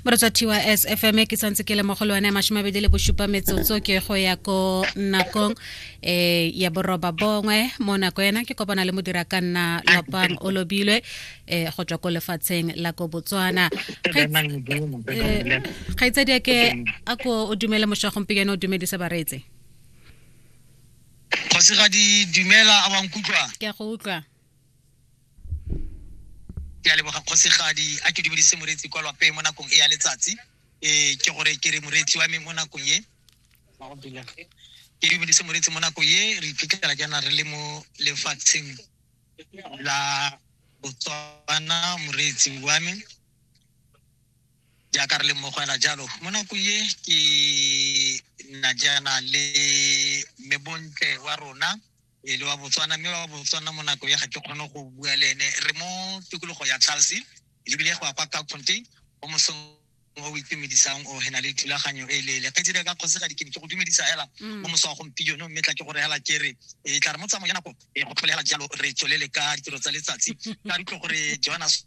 moretsa tys fm ke santse ke le mo go le one masome abedi le bosupa metsotso ke go ya ko nakong eh ya boroba bongwe mo nako ena ke kopana le modira ka nna lopang o lobilwe eh go tswa ko lefatsheng la ko botswana kgaitsadi eh, ke a ko o dumele mošwa gompieno o dumedise baretse kgosigadi dumela a wa nkutlwa ke a go utlwa ke a leboga kgosigadi a ke dumedise moreetsi kwa lwape mo nakong e ya letsatsi um ke gore ke re moreetsi wa me mo nakong e ke dumedise moreetsi mo nakong e re iphitlhela jaana re le mo lefatsheng la botswana moreetsi wa me jaaka re le mmogo ela jalo mo nako ye ke nna jaana le mebontle wa rona e le wa botswana mme wa botswana mo nako ya ga ke kgone go bua le ene re mo tikologo ya charles ebile go ya kwa ka conte o mosong o o itumedisang o hena le thulaganyo e leele ke tsile ka kgosigadi ke ne ke go dumedisa hela mo mosa wa gompieno mme tla ke gore hela ke re e tla re mo tsamayo ya nako e go tlhole hela jalo re tswelele ka ditiro tsa letsatsi ka ditlo gore jonas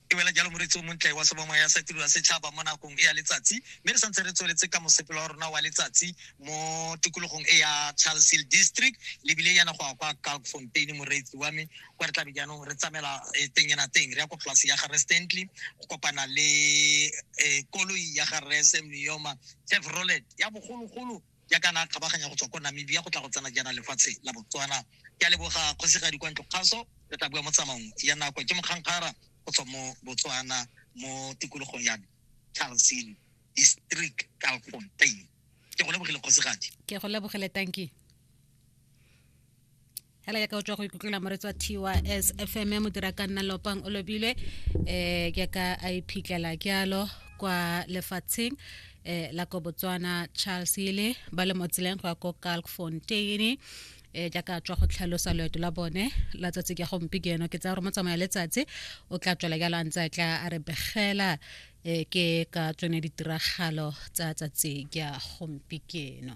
e wela jalo moretsi o montle wa sebongwa ya sa tiro ya setšhaba mo nakong e ya letsatsi mme re santse re tsweletse ka mosepelo wa rona wa letsatsi mo tikologong e ya charles hill district lebile yana go ya kwa kalk fontaine moreetsi wa me kwa re tlabe jaanong re tsamela eh, teng ena teng re ya ko polase ya gare stantley go kopana le eh, koloi ya gare semioma chevrolet ya bogologolo jaaka na kgabaganya go tswa ko namibia go tla go tsena jaana lefatshe la botswana ke a leboga kgosigadi kwa ntlo kgaso re tla bua mo tsamaong ya nako ke mokgankgara go tswa mo botswana mo tikologong ya charleston district calfontain ke go lebogile kgosigadi ke go lebogile tanki hela ya ka o tswa go ikutlwela moretsi wa tys fm mo dira ka nna lopang o lobile um eh, ke ka a iphitlhela ke alo kwa lefatsheng um la ko botswana charles ele ba le mo tseleng go ya ko kalk fontaine e jaaka tswa go tlhalosa loeto la bone la tsatsi ke gompi ke eno ke tsaya gore mo tsamaya letsatsi o tla tswela jalo a ntse a tla a re begela e ke ka tsone ditiragalo tsa tsatsi ke gompi ke eno